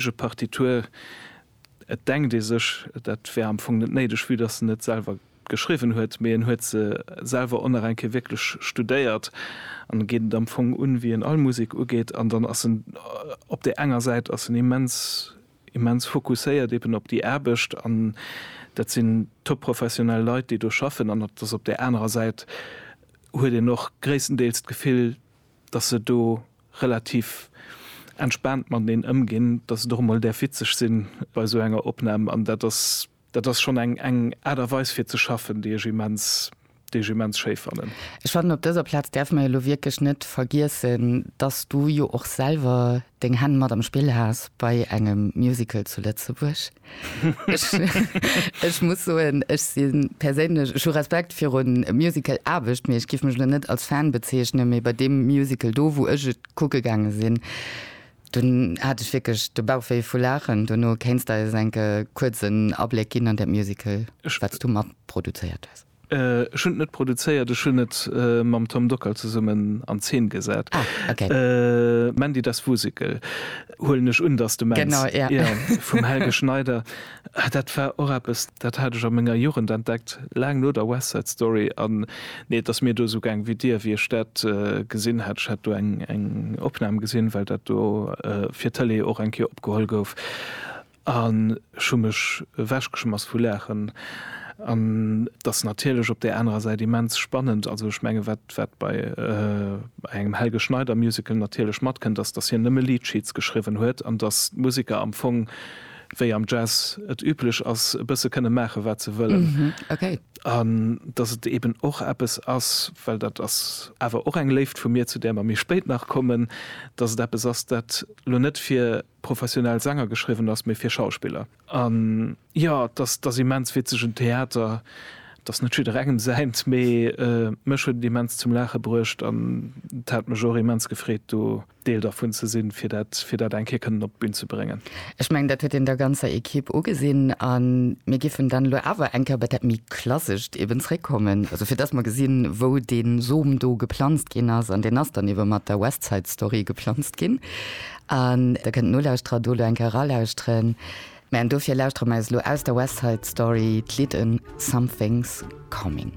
ege Partitur, et denkt ee sech, dat wär am Fong net néideg, vue datt en et selwer geschriwwen huet, mee en huet se selwer ohne reng kee wierklech studéiert an geet et am Fong un, wéi en all Musek ugeet. An dann ass en op där enger Säit ass en immens, immens fokusséiert eben op déi Aarbecht an dat sinn topprofessionell Leit, déi do schaffen, an et ass op där anerer Säit huet een och gréisstendeels d'Gefill, datt se do relativ entspaant mateneen ëmginn, datt et och emol däerf witzeg sinn bei esou enger Opnam. An dat ass, dat ass schonn eng, eng Aart a Weis fir ze schaffen, déi ech immens, déi ech immens schéi fannen. Ech fannen, op dëser Plaz däerfe mer jo elo wierklech net vergiessen, datt s du jo och selwer deng Hänn mat am Spill has bei engem Musical zu Lëtzebuerg. Ech muss soen, ech si perséinlech, ech hu Respekt virun Musical Aarbecht, mee ech giff mech elo net als Fan bezeechnen, mee bei deem Musical do, wou ech et kucke gaange sinn, dunn hat ech wierklech de Bauch wéi vu Laachen. Duerno kéints de eis enke kuerzen Abléck ginn an dat Musical, wat s du matproduzéiert hues? Ech hunn et net produzéiert, ech hunn et mam Tom Dockal zesummen an Zeen gesat. Mandy das Wusikel huelen ech un, dass de mengs, jo, vum Helge Schneider. Dat war och eppes, dat hat ech a menger Jugend entdeckt, laang no der West Side Story. An nee, et ass mir do esou gaang wéi dir, wéi ech dat gesinn hat. Ech hat do eng Opnam gesinn, well dat do fir d'Tëlee och eng Kéier opgeholl gouf. An ech hu mech ewechgeschmass vu Laachen. An et ass natierlech op där anerer Säit immens spannend, also ech mengen, wat bei engem Helge Schneider Musical natierlech matkënnt, ass, datt hien nëmme Lead Sheets geschriwwen huet an datt d'Musiker am Fong, wéi am Jazz et üblech ass, e bësse kënne maache wat se wëllen. An datt et eben och eppes ass, well dat ass awer och eng Léift vu mir, zu där mer méi spéit nach kommen, datt et eppes ass, dat elo net fir professionell Sänger geschriwwen ass, mee fir Schauspiller. An jo, et ass immens witzeg, en Theater, et ass net jidderengem säint, mee mech huet et immens zum Laache bruecht an et hat mech och immens gefreet, do Deel dervun ze sinn, fir dat eng Kéier kënnen op d'Bün ze bréngen. Ech mengen, dat huet een der ganzer Ekipp ugesinn a mir géifen dann elo awer eng Kéier bei dat méi Klassescht eben zréckkommen, also fir dass mer gesinn, wou dee Som do geplanzt ginn ass. An deen ass dann ebe mat der West Side Story geplanzt ginn. An der kënnt Nolauschterer do elo eng Kéier eralauschteren. Mä an dofir lauschtere mer eis elo aus der West Side Story d'Lidd Something's Coming.